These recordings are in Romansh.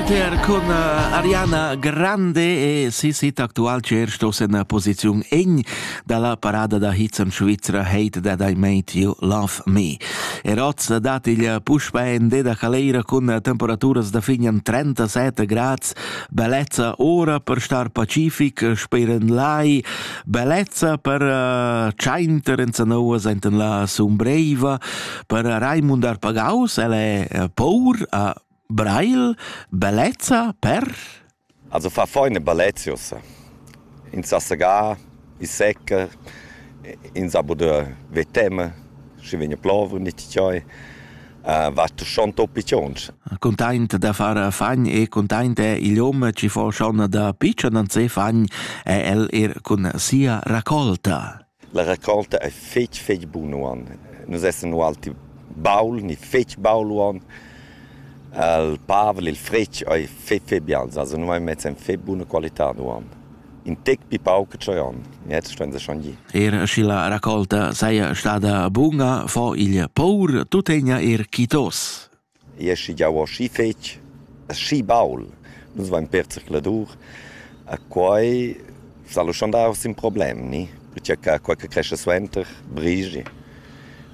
Inter con eh, Ariana Grande e sis hit aktual cer stos en posiziun egn dalla parada da hits en Svizzera Hate That I Made You Love Me. Eroz dat il puspa en deda caleira cun temperaturas da fin en 37 grads, bellezza ora per star pacific, speren lai, bellezza per uh, Chainter en Sanoa senten la sumbreva, per Raimund Arpagaus, el è eh, paur a Brail, bellezza per? Also fa feine bellezia ussa. In sa segar, i secca, in sa poder veteme, schi vegna plover nit chioi. Uh, va tu schon toppi cions. Containt da far fagn e containt è il hom ci fo schon da piccion an se fagn è el er cun sia raccolta. La raccolta ei fetg fetg buna uonn. Nus essan ualti baul ni fetg baul uonn. Il Pavel, il fretg, ei fetg fetg bials. Also nus vein mess en fetg buna qualitad uonn. In tec pli pauc che tscheu onn. Jetzt ston se schon gir. Er sche la raccolta saja stada bunga, fo igl paur tuttegna er chitos. I es schi giau aschi fetg, aschi baul. Nus vain perd zercladur e quai s'ha luschandà uossa ün problem, ni? Perche cha quai che crescha suenter brigi.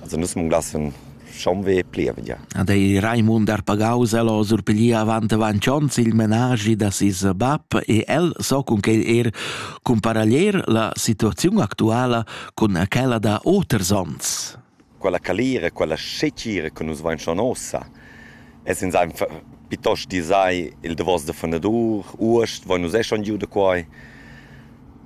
Also nus munglassan schonvè plievgia. Ad ei Raimund Arpagaus el ho surpiglià avant avant ons il menaschi da ses bap e el so cun quel er cumparaglier la situaziun actuala cun quella da oters ons. quella calira, quella scetgira che nus vein schon ossa, es ins einfach piuttost disai il davos da fondadur, uost voin nus eh schon giu da quai.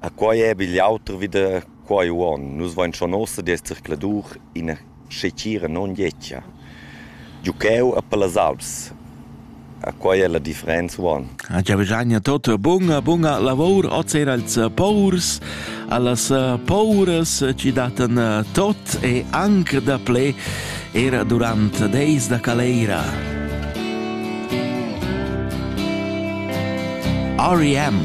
A quai è bigl auter wie da quai uon. Nus vein schon ossa di zircladur ina scetgira non ietia. Giu cheu a per las Alps. A quai è la differenza uonn. A giavagagna tot bunga, bunga lavor, oz er als paurs, allas pauras ci datten tot e anc da ple era durant deis da caleira. REM